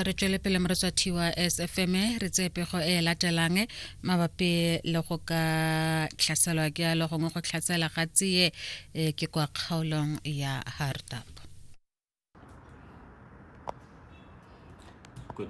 re tswele pele moretshwathi wa sfm re tseye pego e latelang mabapi le go ka tlhaselwa ke alo gongwe go tlhasela ga tseye e, ke kwa kgaolong ya hardap Good.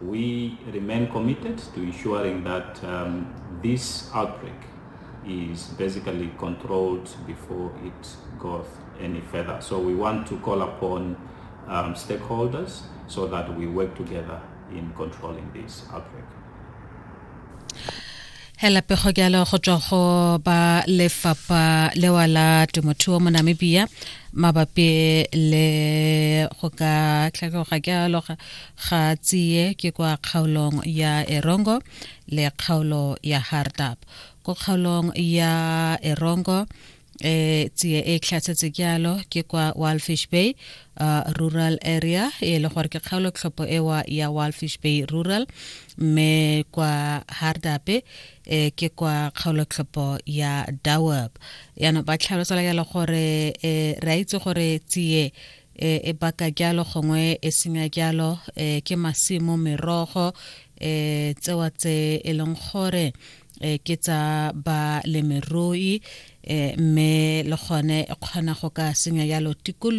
We remain committed to ensuring that um, this outbreak is basically controlled before it goes any further. So we want to call upon um, stakeholders so that we work together in controlling this outbreak. hela pego jalo go tswa go ba lefapha lewa la temothuo mo namibia mabapi le go ka tlhakegoga ke aloga ga tsiye ke kwa kgaolong ya erongo le kgaolo ya hardap ko kgaolong ya erongo e tsie e tlhatsetse jalo ke kwa Walfish Bay uh, rural area e le gore ke kgaolo tlhopho ewa ya Walfish Bay rural mme kwa Hardape e ke kwa kgaolo tlhopho ya Dawab yana ba tlhalosa ya le gore e re itse gore tsie e, e baka jalo gongwe e senya jalo e, ke masimo merogo e, tsewa tse e leng gore e, ke tsa balemirui e, mme le gone e kgona go ka senya jalo tikologo